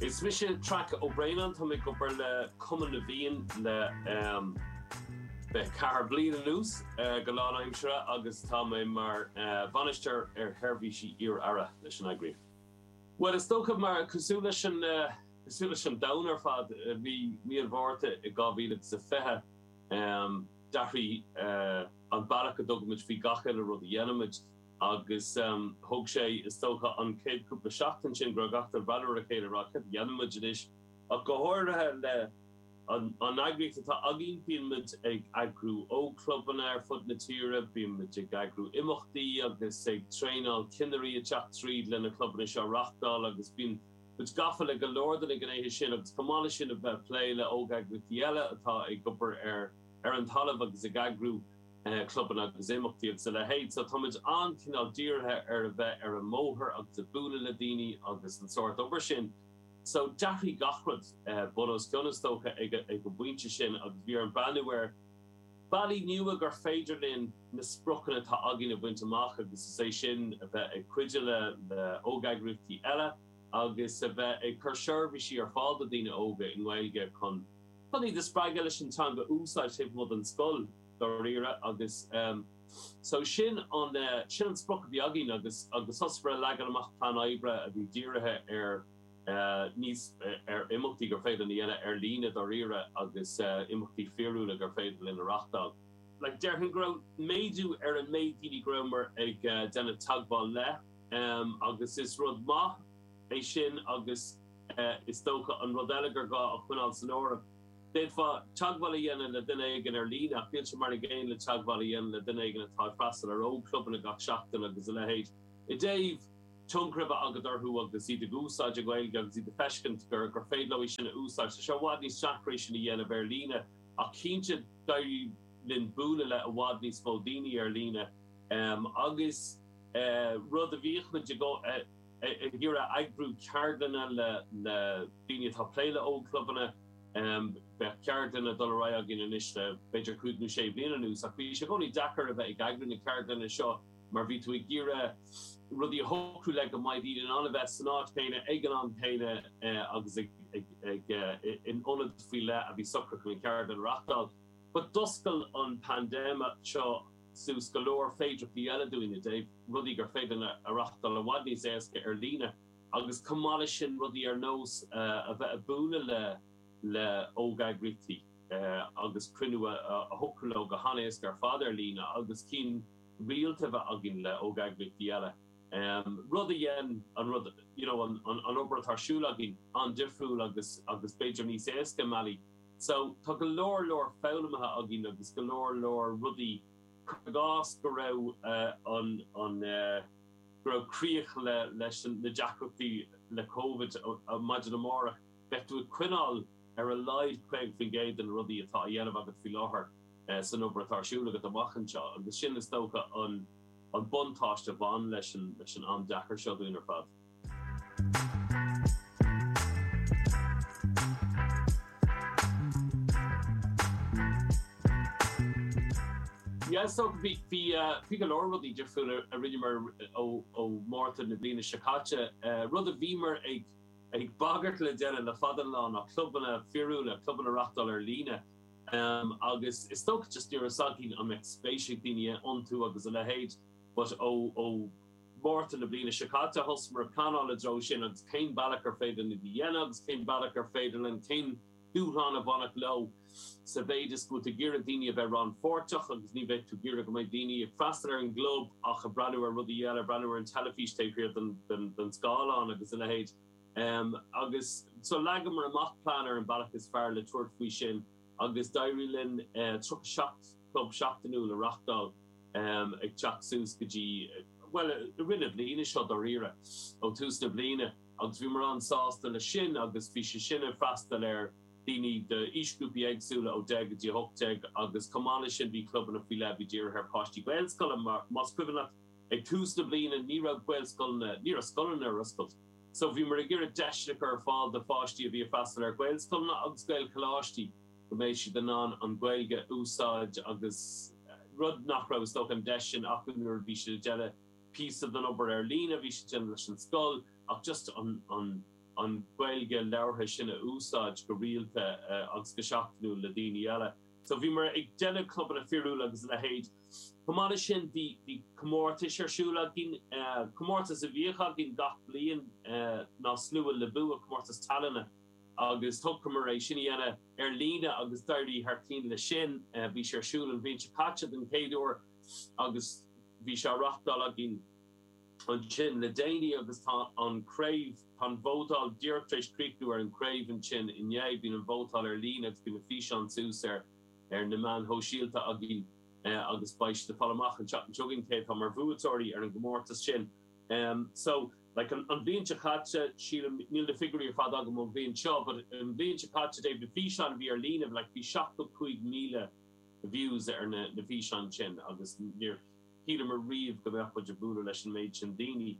Is mise Traic Ó Braonáin. Táim ag obair le Cumann na bhFiann le ceathair bliain anuas go lánaimseartha agus tá mé mar Bhainisteoir ar Sheirbhísí Iar-Aire leis an eagraíocht. Bhuel is dócha mar, cosúil leis an, cosúil leis an domhan ar fad, mí, mí na Márta i 2020 d'athraigh an bealach a dtugaimid faoi chuile rud a dhéanaimid. Agus thóg sé, is dócha, an chéad chúpla seachtain sin go raibh gach duine ag breathnú ar a chéile ag rá, cad a dhéanfaimid anois? Ach go háirithe le an eagraíocht atá againn, bíonn muid ag eagrú ógchlubanna ar fud na tíre, bíonn muid ag eagrú imeachtaí agus ag traenáil cinnirí ag teacht tríd leis na clubanna seo a reachtáil agus bíonn muid gafa le go leor de na gnéithe sin agus chomh maith le sin a bheith ag plé le óg-eagraíochtaí eile atá ag obair ar an talamh agus ag eagrú clubanna agus imeachtaí agus a leithéid. So táimid an-chineál dírithe ar a bheith ar an mbóthar agus ag bualadh le daoine agus an sórt obair sin. So d'athraigh gach rud bun os cionn, is dócha, ag an bpointe sin agus bhí orainn breathnú ar bhealaí nua gur féidir linn na spriocanna atá againn a bhaint amach agus is é sin a bheith ag cuidiú le óg-eagraíochtaí eile agus a bheith ag cur seirbhísí ar fáil do dhaoine óga i nGaeilge chun Chun iad a spreagadh leis an teanga a úsáid taobh amuigh den scoil, dáiríre, agus so sin an sprioc a bhí againn agus thosaíomar ag leagan amach plean oibre a bhí dírithe ar níos, ar imeachtaí gur féidir linn a dhéanamh ar líne, dáiríre, agus imeachtaí fíorúla gur féidir linn a reáchtáil. Like, déarfainn go raibh méadú ar an méid daoine go rabhamar ag déanamh teagmháil le, agus is rud maith é sin agus. Is dócha an rud eile gur gá a choinneáil san áireamh. D'fhéadfá teagmháil a dhéanamh le duine éigin ar líne ach níl sé mar an gcéanna le teagmháil a dhéanamh le duine éigin atá ag freastal ar ógchlub againn gach seachtain agus a leithéid. I dtaobh tionchar a bheith agat orthu agus iad ag úsáid an Ghaeilge agus iad ag feiscint gur gur féidir leo í sin a úsáid, tá sé i bhfad níos deacra sin a dhéanamh ar líne ach cinnte d'éirigh linn bualadh le i bhfad níos mó daoine ar líne, em, agus rud a bhíodh muid ag ag iarraidh eagrú ceardlanna le daoine atá ag plé le ógchlubanna. Bhí ceardlanna ag dul ar aghaidh againn anois le b'fhéidir cúig nó sé bliana anuas ach bhí sé i gcónaí deacair a bheith ag eagrú na ceardlanna seo mar bhí tú ag iarraidh rudaí a shocrú le go mbeadh daoine in ann a bheith san áit chéanna ag an am céanna agus ag in ionad faoi leith a bhí socraithe chun an cheardlann a reachtáil. But d'oscail an phaindéim seo. suas go leor féidearthachtaí eile dúinn i dtaobh rudaí gur féidir linn a reáchtáil i bhfad níos éasca ar líne agus chomh maith leis sin rudaí ar nós a bheith ag bualadh le le hógeagraíochtaí agus cruinniú a shocrú leo go han-éasca ar fad ar líne agus cinn rialta a bheith againn le hógeagraíochtaí eile rud a dhein an rud you know an obair atá ar siúl againn an-difriúil agus agus b'fhéidir níos éasca i mbealaí. So, tá go leor leor foghlamtha againn agus go leor leor rudaí, cuir i gcás go raibh an, an eh, go raibh críoch le, leis an, na deacrachtaí le Covid maidin amárach, bheadh tú ag coinneáil ar a laghad 50% de na rudaí atá á dhéanamh agat faoi láthair san obair atá ar siúl agat amach anseo agus sin is dócha an, an buntáiste a bhain leis an, leis an am deacair seo dúinn ar fad. Yeah so bhí, bhí eh, bhí go leor rudaí difriúla a rinneamar ó, ó Mhárta na bliana seo caite. Eh, rud a bhíomar ag, ag bagairt le déanamh le fada an lá ná clubanna fíorúla, clubanna a reáchtáil ar líne. Em, agus is dócha just ní raibh a fhios againn an mbeadh spéis ag daoine iontu agus a leithéid but ó, ó, Márta na bliana seo caite. Thosamar ag pleanáil i dtreo sin agus cén bealach ar féidir linn a dhéanamh agus cén bealach ar féidir linn, cén dúshlán a bhainfeadh leo sa mhéid is go bhfuil tú ag iarraidh daoine a bheith rannpháirteach agus ní bheidh tú ag iarraidh go mbeidh daoine ag freastal ar an gclub ach ag breathnú ar rudaí eile, ag breathnú ar an teilifís taobh thiar den scáileán agus a leithéid. Agus so leagamar amach plean ar an bealach is fearr le tabhairt faoi sin agus d'éirigh linn 37. club seachtainiúil a reáchtáil ag teacht suas go dtí, bhuel, i rith na bliana seo dáiríre, ó tús na bliana agus bhíomar an-sásta leis sin agus bhí sé sin ag freastal ar daoine d'aoisghrúpaí éagsúla ó 10 go dtí 18 agus chomh maith leis sin bhí clubanna faoi leith a bhí dírithe ar pháistí Gaelscoile mar, más cuimhin leat, ag tús na bliana ní raibh Gaelscoileanna, ní raibh scoileanna ar oscailt so bhíomar ag iarraidh deiseanna a chur ar fáil do pháistí a bhí ag freastal ar Ghaelscoileanna agus Gaelcholáistí. go mbeidh siad in ann an Ghaeilge a úsáid agus rud nach raibh, is dócha, an deis sin acu nuair a bhí siad ag déanamh píosa den obair ar líne a bhí siad ag déanamh leis an scoil ach just an Ghaeilge labhartha sin a úsáid go rialta agus go seachtainiúil le daoine eile. So bhíomar ag déanamh clubanna fíorúla agus a leithéid. Chomh maith leis sin, bhí comórtais ar siúl againn. Comórtas a bhíodh againn gach bliain ná Slua le Bua, comórtas tallainne. agus thoghamar é sin a dhéanamh ar líne agus d'éirigh thar cinn leis sin. Bhí sé ar siúl an bhliain seo caite den chéad uair agus bhí sé á reáchtáil againn ansin le déanaí agus tá an chraobh, tá an vótáil díreach tar éis críochnú ar an gcraobh ansin inné, bíonn an vótáil ar líne agus bíonn na físeáin suas ar na meáin shóisialta againn agus beidh siad ag fáil amach an tseachtain seo chugainn cé atá mar bhuaiteoirí ar an gcomórtas sin. So. Like, an bhliain seo caite, sílim, níl na figiúirí ar fad agam ón bhliain seo, but an bhliain seo caite, de na físeáin a bhí ar líne, like, bhí 75,000 views ar na na físeáin sin agus níor shíleamar riamh go mbeadh muid ag bualadh leis an méid sin daoine.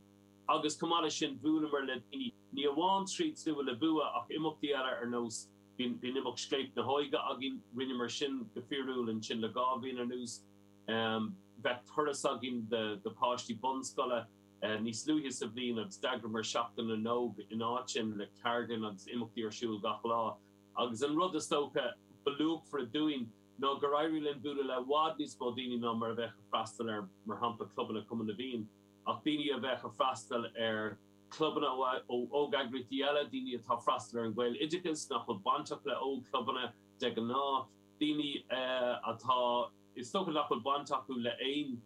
Agus chomh maith leis sin, bhuaileamar le daoine, ní amháin tríd Slua le Bua ach imeachtaí eile ar nós, bhí an imeacht Scléip na hÓige againn, rinneamar sin go fíorúil ansin le dhá bhliain anuas, bheadh turas againn do pháistí bunscoile, níos luaithe sa bhliain agus d'eagraíomar Seachtain na nÓg in áit sin le ceardlann agus imeachtaí ar siúl gach lá agus an rud is dócha ba luachmhaire dúinn ná gur éirigh linn bualadh le i bhfad níos mó daoine ná mar a bheadh ag freastal ar mar shampla clubanna Cumann na bhFiann ach daoine a bheadh ag freastal ar chlubanna óg-eagraíochtaí eile, daoine atá ag freastal ar an nGaeloideachas nach bhfuil bainteach le óg-chlubanna de ghnáth, daoine atá. Is dócha nach bhfuil baint acu le aon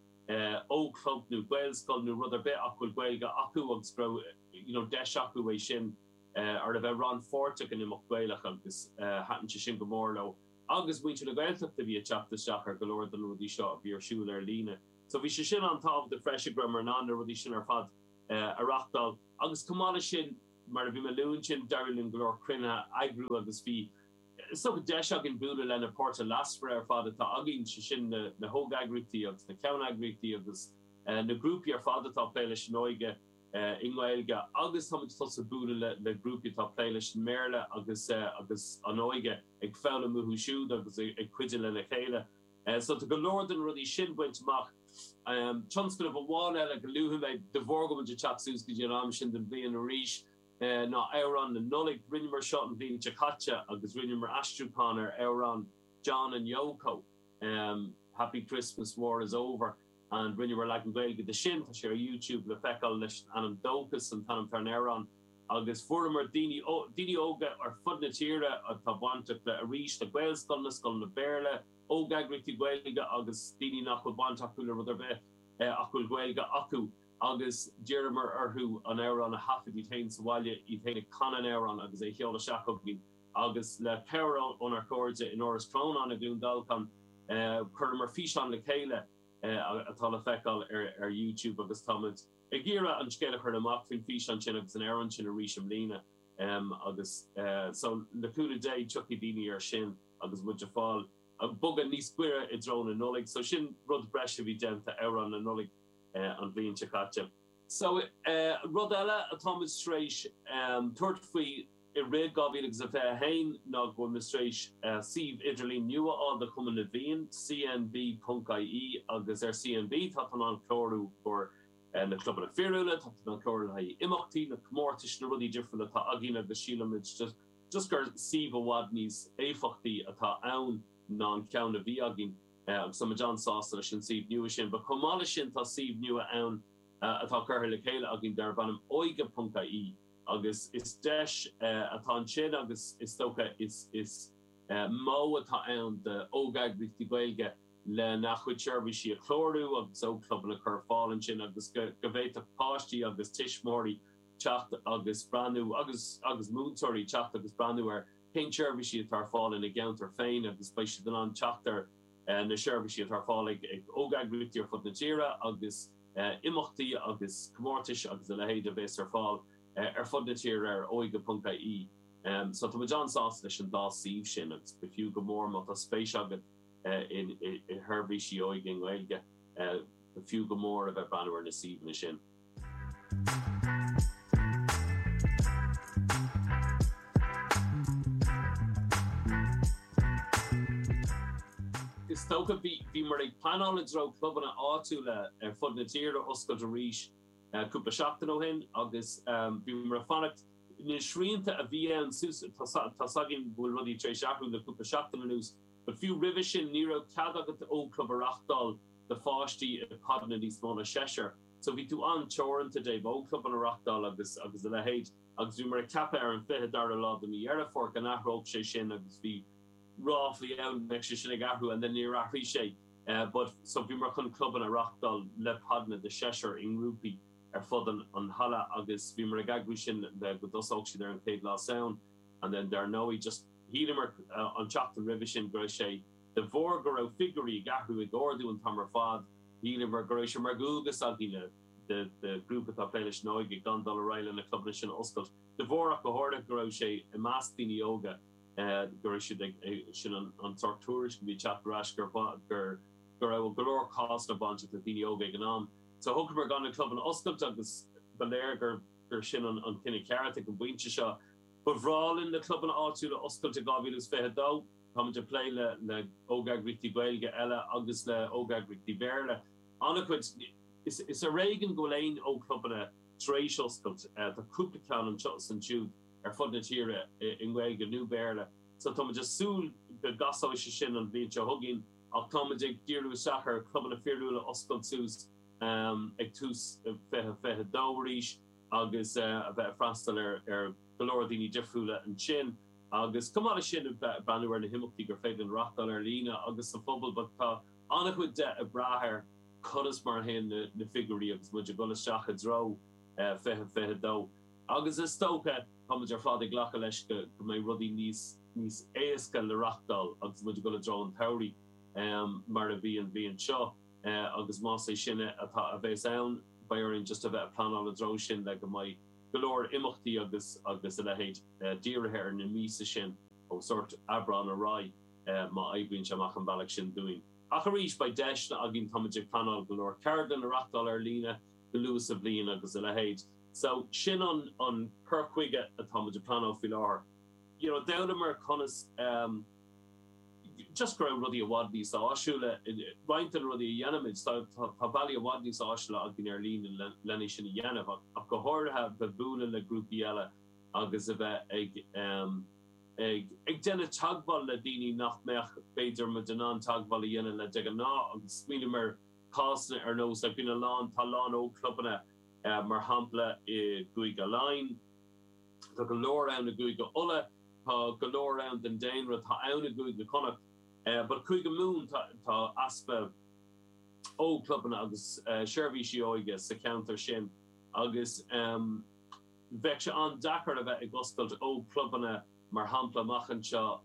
ógchlub nó Gaelscoil nó rud ar bith ach go bhfuil Gaeilge acu agus go raibh you know deis acu é sin ar a bheith rannpháirteach in imeacht Gaelach agus thaitin sé sin go mór leo agus muintir na Gaeltachta bhí ag teacht isteach ar go leor de na rudaí seo a bhí ar siúl ar líne. So bhí sé sin an-tábhachtach freisin go raibheamar in ann na rudaí sin ar fad a reachtáil agus chomh maith leis sin mar a bhí mé ag lua ansin d'éirigh linn go leor cruinnithe a eagrú agus bhí is dócha deis againn bualadh le na páirtithe leasmhara ar fad atá againn, sé sin na hóg-eagraíochtaí agus na ceann-eagraíochtaí agus na grúpaí ar fad atá ag plé leis an óige i nGaeilge agus táimid ag tosú ag bualadh le grúpaí atá ag plé leis an mBéarla agus agus an óige ag foghlaim uathu siúd agus ag cuidiú lena chéile. So tá go leor de na rudaí sin bainte amach. Tionscnamh amháin eile go luafaidh mé, de bharr go bhfuil muid ag teacht suas go dtí an am sin den bhliain arís, ná amhrán na Nollaig. Rinneamar seo an bhliain seo caite agus rinneamar aistriúchán ar amhrán John and Yoko, Happy Christmas, War is Over and rinneamar leagan Gaeilge de sin. Tá sé ar YouTube le feiceáil leis an ainm Dóchas, sin an t-ainm atá ar an amhrán agus fuaireamar daoine óga ar fud na tíre atá bainteach le, arís, le Gaelscoileanna, scoileanna Béarla, óg-eagraíochtaí Gaeilge agus daoine nach bhfuil baint acu le rud ar bith ach go bhfuil Gaeilge acu. agus d'iarramar orthu an amhrán a thaifead iad féin sa bhaile, iad féin ag canadh an amhráin agus é sheoladh isteach chugainn. Agus le cabhair ónár chairde in Áras Chrónáin i gCluain Dolcáin, chuireamar físeán le chéile atá le feiceáil ar YouTube agus táimid ag iarradh an scéal a chur amach faoin físeán sin agus an amhrán sin arís i mbliana agus so le cúnamh Dé tiocfaidh daoine air sin agus muid ag fáil, ag bogadh níos goire i dtreo na Nollaig. So sin rud breise a bhí déanta, amhrán na Nollaig. an bhliain seo caite. Sea, rud eile atáimid tar éis tabhairt faoi i rith 2021 ná go bhfuilimid tar éis suíomh idirlín nua a fháil do Chumann na bhFiann, cnb.ie, agus ar CNB tá tú in ann clárú do na clubanna fíorúla, tá tú in ann clárú le haghaidh imeachtaí, na comórtais, na rudaí difriúla atá againn agus sílimid just gur suíomh i bhfad níos éifeachtaí atá ann ná an ceann a bhí againn. Agus tá muid an-sásta leis an suíomh nua sin. But chomh maith leis sin tá suíomh nua ann atá curtha le chéile againn darb ainm Óige.ie agus is deis atá ansin agus is dócha iosmairt atá ann d'ógeagraíochtaí Gaeilge lena chuid seirbhísí a chlárú agus ógchlubanna a chur ar fáil ansin agus go bhféadfadh páistí agus tuismitheoirí teacht agus breathnú agus agus múinteoirí teacht agus breathnú ar cén seirbhísí atá ar fáil ina gceantar féin agus beidh siad in ann teacht ar na seirbhísí atá ar fáil ag óg-eagraíochtaí ar fud na tíre agus imeachtaí agus comórtais agus a leithéid a bhéas ar fáil ar fud na tíre ar óige.ie so tá muid an-sásta leis an dá suíomh sin agus gur fiú go mór má tá spéis agat i seirbhísí óige i nGaeilge gur fiú go mór a bheith ag breathnú ar na suíomhanna sin. Is dócha. Bhíomar ag pleanáil i dtreo clubanna áitiúla ar fud na tíre a oscailt arís cúpla seachtain ó shin agus bhíomar ag fanacht. Na srianta a bhí ann ansin, tá a fhios againn go bhfuil rudaí tar éis athrú le cúpla seachtain anuas, but fiú roimhe sin ní raibh cead agat ógchlub a reáchtáil. do pháistí i bpodanna níos mó ná seisear. So bhí tú an-teoranta ó thaobh ógchlubanna a reachtáil agus agus a leithéid agus bhíomar ag ceapadh ar an 22ú lá de mí Dheireadh Fómhair go n-athródh sé sin agus bhí ráflaí ann go mbeadh sé sin ag athrú and then níor athraigh sé but so bhíomar chun clubanna a reachtáil le podanna de seisear i ngrúpaí ar fud an an halla agus bhíomar ag eagrú sin le go dtosódh siad ar an chéad lá Samhain and then dar ndóigh just shíleamar an tseachtain roimhe sin go raibh sé De bharr go raibh figiúirí ag athrú ag ardú an t-am ar fad, shíleamar go raibh sé mar dhualgas againn mar ghrúpa atá ag plé leis an óige gan dul ar aghaidh le na clubanna sin a oscailt de bharr ach go háirithe go raibh sé i measc daoine óga go raibh siad ag sin an sórt tuairisc a bhí ag teacht ar ais gur gur go raibh go leor cásanna bainteach le daoine óga ag an am. So shocraimear gan na clubanna a oscailt agus ba léir gur gur sin an an cinneadh ceart ag an bpointe seo. Ba bhreá linn na clubanna áitiúla a oscailt i 2022. Táimid ag plé le ógeagraíochtaí Gaeilge eile agus le ógeagraíochtaí Béarla an-chuid. Is ar éigean go bhfuil aon ógchlubanna tar éis oscailt. Tá cúpla ceann anseo is ansiúd ar fud na tíre i nGaeilge nó Béarla so táimid ag súil go gcasóidh sé sin an bhliain seo chugainn ach táimid ag díriú isteach ar chlubanna fíorúla a oscailt suas ag tús 2022 arís agus a bheith ag freastal ar go leor daoine difriúla ansin. Agus chomh maith leis sin, ag breathnú ar na himeachtaí gur féidir linn reáchtáil ar líne agus sa phobal, bhuel, tá an-chuid de ag brath ar conas mar a théann na figiúirí agus muid ag dul isteach i dtreo 2022. Agus is dócha, tá muid ar fad ag glacadh leis go mbeidh rudaí níos níos éasca le reáchtáil agus muid ag dul i dtreo an tsamhraidh mar a bhí an bhliain seo agus más é sin mar a bheas ann, beidh orainn just a bheith ag pleanáil i dtreo sin le go mbeidh. go leor imeachtaí agus agus a leithéid dírithe ar na míosa sin ó sórt Aibreán ar aghaidh má oibríonn sé amach an bealach sin dúinn. Ach arís beidh deiseanna againn, táimid ag pleanáil go leor ceardlann a reachtáil ar líne go luath sa bhliain agus a leithéid. So sin an an cur chuige atáimid ag pleanáil faoi láthair. You know d'fhoghlamar conas, just go raibh rudaí i bhfad níos áisiúla, roinnt de na rudaí a dhéanaimid, tá bealaí i bhfad níos áisiúla againn ar líne lena é sin a dhéanamh ach go háirithe bheith ag bualadh le grúpaí eile agus a bheith ag ag ag déanamh teagmháil le daoine nach mbeadh, b'fhéidir, muid in ann teagmháil a dhéanamh le de ghnáth agus smaoiním ar chásanna ar nós like bíonn a lán, tá a lán ógchlubanna mar shampla i gCúige Laighean, Tá go leor ann i gCúige Uladh, tá go leor ann den daonra atá ann i gCúige Chonnacht, but Cúige Mumhan tá easpa ógchlubanna agus seirbhísí óige sa cheantar sin agus bheadh sé an-deacair a bheith ag oscailt ógchlubanna mar shampla amach anseo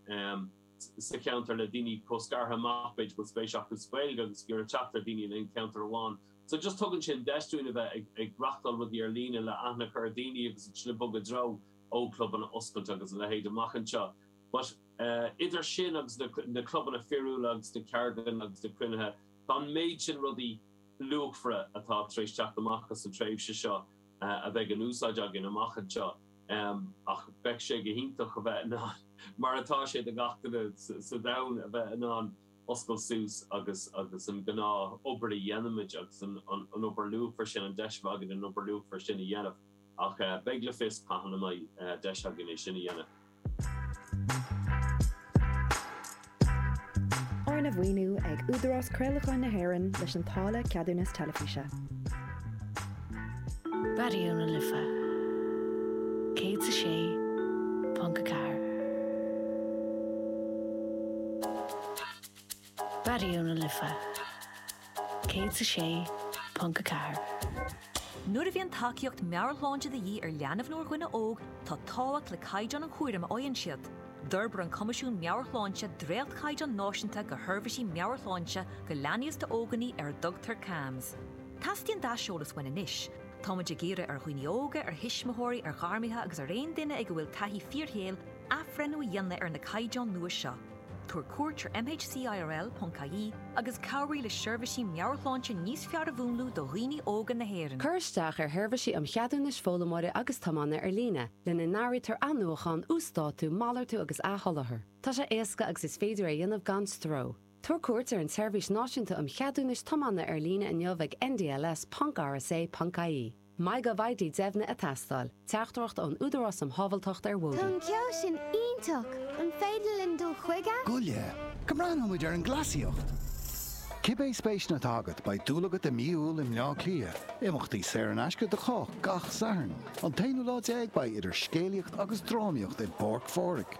sa cheantar le daoine chomh scartha amach, b'fhéidir go bhfuil spéis acu sa Ghaeilge agus ag iarraidh teacht ar dhaoine in aon cheantar amháin. So just tugann sin deis dúinn a bheith ag reachtáil rudaí ar líne le aithne a chur ar daoine agus ansin ag bogadh i dtreo ó clubanna oscailte agus a leithéid amach anseo. But idir sin agus na clubanna fíorúla agus na ceardlanna agus na cruinnithe tá an méid sin rudaí luachmhara atá tar éis teacht amach as an tréimhse seo a bheidh in úsáid againn amach anseo ach bheadh sé go hiontach a bheith in ann mar atá sé do gach duine sa domhan a bheith in ann oscailt suas agus agus an gnáthobair a dhéanaimid agus an an an obair luachmhar sin an deis a bheith againn an obair luachmhar sin a dhéanamh ach eh beidh le feiceáil cathain a mbeidh eh deis againn é sin a dhéanamh. Arna mhaoiniú ag Údarás Craolacháin na hÉireann leis an táille ceadúnas teilifíse. Raidió na Life 106.4. Raidió na Life 106.4. Nuair a bhíonn tacaíocht meabhairshláinte de dhíth ar leanbh nó ar dhuine óg, tá tábhacht le caighdeán an chúraim a fhaigheann siad. D'fhorbair an Coimisiún Meabhair-Shláinte dréachtchaighdeáin náisiúnta do sheirbhísí meabhairshláinte do leanaí is d'óganaí ar a dtugtar CAMHS. Teastaíonn d'aiseolas uainn anois. Táimid ag iarraidh ar dhaoine óga, ar thuismitheoirí, ar ghairmithe agus ar aon duine ag a bhfuil taithí fíorshaoil athbhreithniú a dhéanamh ar na caighdeáin nua seo. Tabhair cuairt ar mhcirl.ie agus cabhraigh le seirbhísí meabhairshláinte níos fearr a mhúnlú do dhaoine óga na hÉireann. Cuir isteach ar Sheirbhísí um Cheadúnais Foghlaimeora agus Tiomána ar líne, lena n-áirítear athnuachán, uasdátú, malartú agus athsholáthar. Tá sé éasca agus is féidir é a dhéanamh gan stró. Tabhair cuairt ar an tSeirbhís Náisiúnta um Cheadúnais Tiomána ar líne inniu ag ndls ponc rsa ponc ie. MyGovID deimhnithe ag teastáil. Teachtaireacht ón Údarás um Shábháilteacht ar Bhóithre. Tá an ceol sin iontach! An féidir linn dul chuige? Goile! Go mbreathnóidh muid ar an gcleasaíocht! Cibé spéiseanna atá agat, beidh dúil agat i mí Iúil i mBleá Cliath. Imeachtaí saor in aisce do chách gach Satharn. An t-aonú lá déag beidh idir scéalaíocht agus drámaíocht i bPáirc Phádraig.